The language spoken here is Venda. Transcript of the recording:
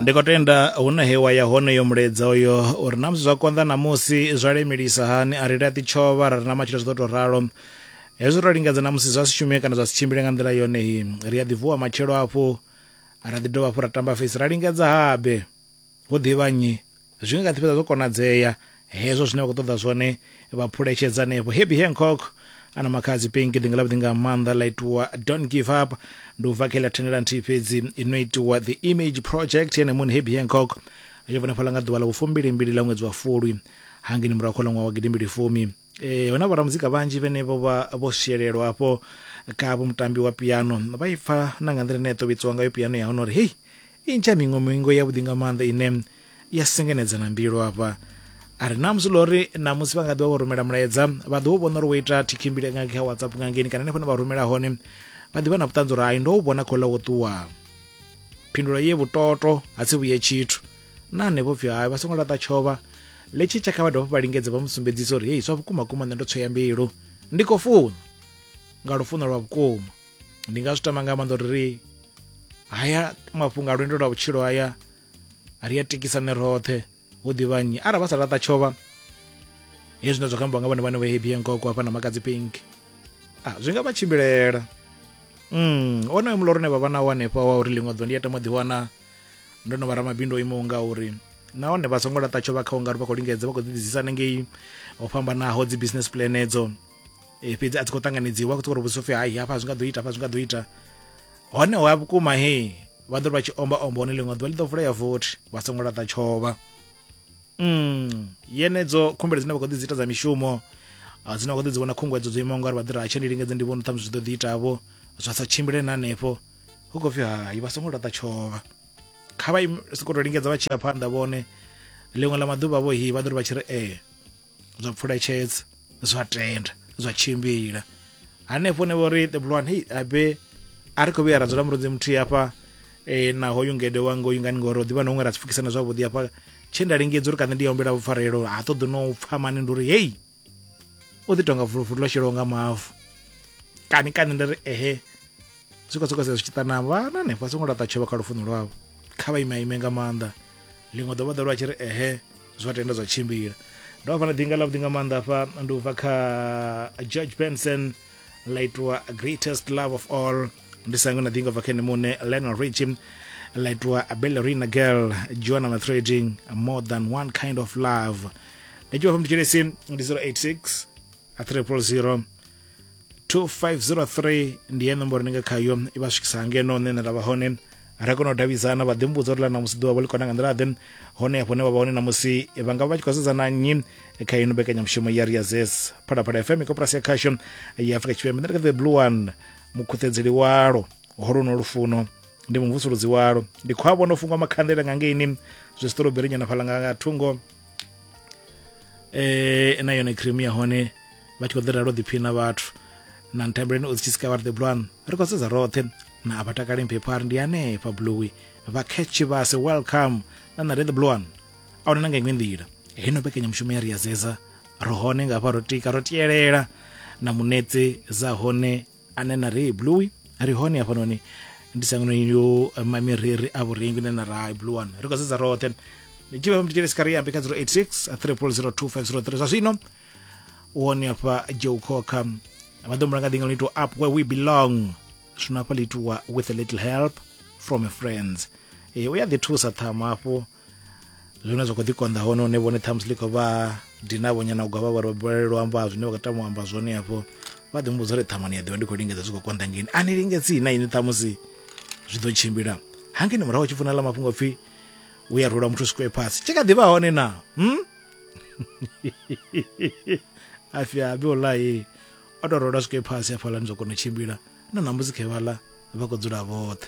ndi khou tenda hune he wa ya hone yo mulaedza uyo uri na musi zwa konḓa namusi zwa lemelisa hani a ri laṱi tshovha ra ri na matshilo zwi ḓo tou ralo hezwi ro lingedza na musi zwa si shume kana zwa si tshimbile nga nḓila yone hi ri a ḓi vuwa matshelo hafhu ra ḓi dovha hafhu ra tamba fesi ra lingedza habe Ho ḓivha nnyi? Zwi nga kha ḓi fhedza zwo konadzea hezwo zwine vha khou ṱoḓa zwone vha phuletshedza hanefho happy hancock ana makhadzi pinki ḓinga ḽavhuḓi nga maanḓa ḽa itiwa don't give up ndi u bva kha iḽa thandela nthihi fhedzi ino itiwa the image project yene muṋe happy hancock yo vhonefhala nga ḓuvha ḽa vhufumbilimbili ḽa ṅwedzi wa fulwi hangini murahu kha ḽa ṅwaha wa gidimbili fumi Eh, huna vhoramuzika vhanzhi vhene vho vha vho swielelwa afho kha vho mutambi wa piano vha i pfa na nga nḓila ine ya tovhitsiwa ngayo piano ya hone uri hei i ntsha miṅwe miṅwe yavhuḓi nga maanḓa ine ya sengenedza na mbilu afha a ri namusi ḽo ri namusi vha nga ḓivha vho rumela mulaedza vha ḓo u vhona uri wo ita thikhimbile nga kha whatsapp nga ngeni kana henefho ne vha rumela hone vha ḓivha na vhuṱanzi uri hai ndo u vhona khou ḽa wo ṱuwa phindulo ye vhutoto ha si vhuye tshithu na hanevho pfhi hayo vha songo laṱa tshovha letshi tsha kha vha dovha vha lingedze vha mu sumbedzisa uri hei zwa vhukuma kuma nṋe ndo tsweya mbilu ndi khou funa nga lufuno lwa vhukuma ndi nga zwi tama nga maanḓa uri ri haya mafhungo a lwendo lwa vhutshilo haya ri a tikisane roṱhe hu ḓivha nnyi arali vha sa laṱa tshovha he zwine zwa khou ambiwa nga vhone vhane vha hebi yankoko hafha na makadzi pink a zwi nga vha tshimbilela mm onoyo muloro une vha vha nawo hanefha wa uri ḽiṅwe ḓo ndi ya tama ḓiwana ndo no vha ramabindu o imaho nga uri nahone vha songo laṱa tsho vha kha ungari vha khou lingedza vha khou ḓiḓisisa hanengei ho fhambanaho dzi business plan edzo e, fhedzi a dzi khou ṱanganedziwa khou uri vhudzisa upfi hai hafha zwi nga ḓo ita hafha zwi nga ḓo ita hone ho ya vhukuma he vha ḓo ri vha tshi omba omba hone ḽiṅwe ḓuvha ḽi ḓo vulea vothi vha songo laṱa tshovha mm yenedzo khumbelo dzine vha khou ḓi dzi ita dza mishumo dzine vha khou ḓi dzi vhona khunguwedzo dzo imaho ngauri vha ḓi ri ha tshe ndi lingedze ndi vhona ṱhamusi zwi ḓo ḓi itavho zwa sa tshimbile na hanefho hu khou pfi hai vha songo laṱa tshovha kha vha soko to lingedza vha tshi ya phanḓa vhone ḽiṅwe ḽa maḓuvha vho hi vha ḓo ri vha tshi ri ee eh, zwa pfuletshedza zwa tenda zwa tshimbila hanefho ne vho ri ṱebulwane hei abe a ri khou vhuya ra dzula murunzi muthihi hafha e, na hoyu ngede wa ngoyu ngani ngori ḓivha na huṅwe ra si pfukisana zwavhuḓi hafha tshe nda lingedza uri kana ndi ya humbela vhupfarelo ha ṱoḓi no pfha mani ndi uri hei u ḓi tonga vuluvulu ḽo shelaho nga mavu kani kani ndi ri ehe swika swika zwi tshi ṱana vhana hanefha songo laṱa tshovha kha lufuno lwavho kha vha ime ime nga maanḓa ḽiṅwe ḓo vha ḓo lwa tshi ri ehe zwa tenda zwa tshimbila ndo vha fana dinga ḽa vhuḓi nga maanḓa hafha ndi u bva kha george benson ḽa itiwa greatest love of all ndi sango na ḓinga bva kha ene muṋe lionel richie ḽa itiwa bellerina girl joana na trading more than one kind of love ndi tshivha fha mutshilesi ndi 086 triple 0 2503 ndi ye nomboro ni nga khayo i vha swikisa hangeno nṋe nda vha hone ra kona u davhidzana vha ḓimbudza uri ḽa namusi ḓuvha vho ḽi kona nga nḓila ḓe hone hafho ne vha vha hone namusi vha nga vha tshi khou sedzana nnyi kha ino mbekanyamushumo ya riazes phalaphala fm koporasi ya khasho ya afrika tshipembe ndi kha the blue one mukhuṱedzeli walo holuno lufuno ndi mumvusuludzi walo ndi khou a vhona u fungwa makhanḓela nga ngeini zwi siṱoroberi nyana fhala nga thungo um eh, na yone cream ya hone vha tshi khou ḓiralo ḓiphina vhathu na ntambeleni o zitshitsika vha ri the blwan ri khou sedza roṱhe na a vha takale mphepho a ri ndi hanefha bluwi vha catch vhase welcome na na re the blwan a huna na nga iṅwe nḓila heno mbekanyamushumo ya ri ya zeza ri hone nga hafha ro tika ro tielela na munetse za hone ane na ri blue ri hone hafhanoni ndi sangano yo mamiriri a vhurengi ne na ra blue one ri khou sedza roṱhe ndi tshi vha mutshitshele sikariambe kha 086 3002 zwa zwino u hone hafha joe cocker vha ḓo mulanga ḓinga lito up where we belong zwino hafha litiwa with a little help from a friends e u ya ḓi thusa ṱhamu hafho zwine zwa kho ḓi konḓa hone hune vhone ṱhamusi ḽi khou vha dina vhonyana u gwavha vharobele luambo ha zwine vha khou tama u amba zwone hafho vha ḓi mbudza uri ṱhamani ya ḓivha ndi khou lingedza zwi khou konḓa ngeni a ni lingedzi na ini ṱhamusi zwi ḓo tshimbila hangeni murahu tshi funa ḽa mafhungo pfhi u ya rula muthu sikwe phasi tshi kha ḓivha hone na hmm? afya abi wallahi o tou rola sikwe phasi hafhaḽani zwa kona u tshimbila na ṋambusi khevhaḽa vha khou dzula vhoṱhe